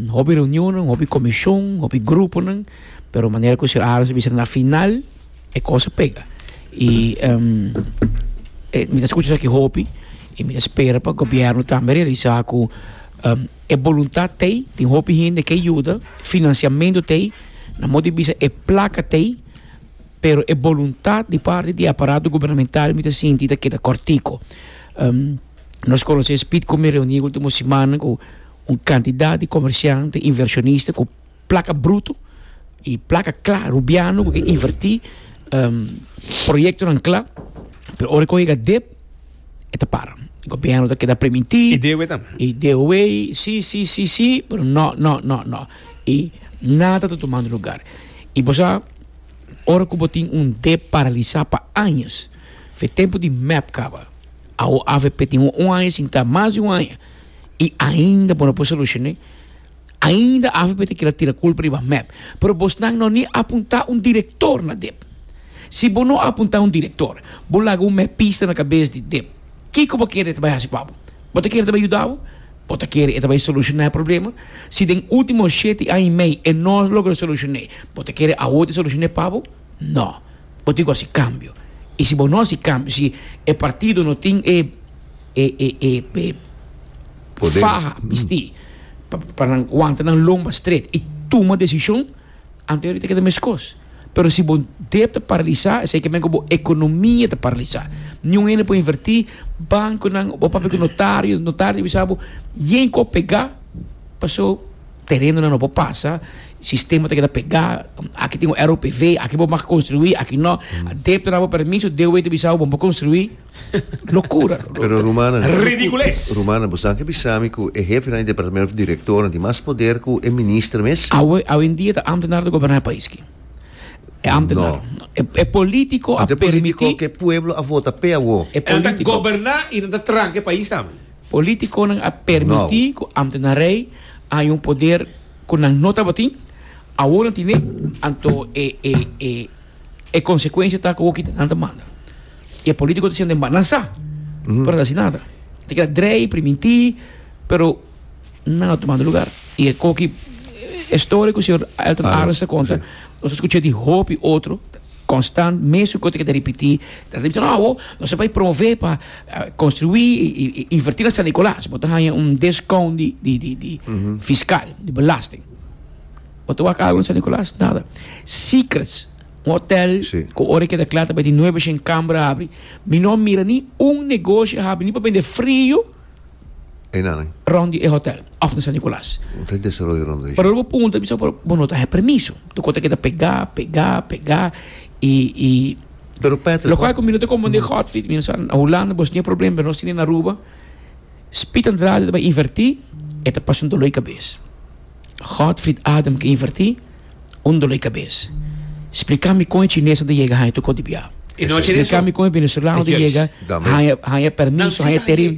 Hopi reunionnan, hopi komishon, hopi gruponan, pero manera ku Sr. Aros a bisa na final e kos a pega. I mi ta skucha esaki hopi i mi ta spera pa gobièrnu tambe realisá ku e boluntat ta ei, tin hopi hende ke yuda, finansiamentu ta ei, na mos di bisa e plaka ta ei. Pero e boluntat di parti di e aparato gubernamental mi ta sinti ta keda kòrtiku. Nos konosé Speed ku mi reuní último simannan ku un kantidat di komersiant, inversionista ku plaka brutu i plaka kla, rubiano ku ke invertí proyektonan kla, pero ora ku e yega dep e ta para. Gobièrnu ta keda primintí. I dewe tambe. I dewe, sí, sí, sí, sí, pero no, no, no, no. I nada ta tumando lugar. I bo sa. Ora ku bo tin un dé paralisá pa añas, fe tempu di mep kaba. Awo avp tin un aña sin ta mas di un aña i ainda bo no por solushoné. Ainda avp ta kila tira kulpa riba mep. Pero bosnan no ni apuntá un direktor na dep. Si bo no apuntá un direktor, bo laga un mepista na kabes di dep. Kiko bo kere ta bai hasi pa bo? Bo ta kere ta bai yuda bo? Bo ta kere e ta bai solushoná e problema? Si den último shete aña i mei e no a logra solushoné, bo ta kere awor ta solushoné pa bo? No. Bo tin ku hasi kambio. I si bo no hasi kambio, si e partido no tin e e e faha mestí pa nan wanta nan lomba stret i tuma desishon, anto e tabata keda meskos. pero si bo dep ta paralisa esei ke men ku bo ekonomia ta paralisa ni un hende por inverti bankonan bo papia ku notario notario ta bisa bo yen ku a pega paso terenonan no por pasa sistema ta keda pega aki tin un ROPV aki bo mag konstruí aki no dep ta nabo permiso DOW ta bisa bo bo no por konstruí. Locura. Pero Rumana. Ridicules. Rumana, bo sabi bisa mi cu e hefinan di departamento of directoren tin mas poder cu e minister mes? Awe, awendia ta ambtenaar ta goberna e pais ki. E ambtenaar. No. E, e politico a permiti. Ante politico ke pueblo a vota pe awo. E politico. Nan ta goberna y nan ta tranca e pais tambe. Politiconan a permiti no. cu ambtenarij a hay un poder cu nan no tabatin, awo nan tine, anto e, e, e. E konsekuensia ta ku wok kita nan ta manda. I e polítiko ta siña den banan sa, pero nan ta si nada. Ta keda drei, primintí, pero nan a tumando lugar. I e koki, e storie ku señor Aelton Aras Aras, ta konta, si. nos a skucha di hopi otro, konstant, mesun kos ta keda ripití, nan ta bisa, no, awo nos a bai promové pa konstruí i invertí na San Nikòlas, bo ta haña un deskoun di, di, di, di fiskal, di belasting. Bo ta wak algu na San Nicolas? Nada. Secrets, un hotel cu ora e keda cla ta bai tin nuebe shen cambra habri, mi no a mira ni un negoshi a habri ni pa bende frio rond di e hotel of na San Nicolas. Pasobra bo punta bisa por bo no ta haya permiso. Toco ta keda pega, pega, pega y loco cu mi no ta compra den hot feet. Mi a sa na Hulanda bo shini e problem pero no shini na Aruba. Speed Andrade ta bai inverti e ta pasa un dolor di cabes. Godfried Adam ke invertí? Un dolé kabes. Spliká mi kon e chineso ta yega haña tu kos di biaha. Spliká mi kon e venezolano ta yega haña haña permiso, haña tereno.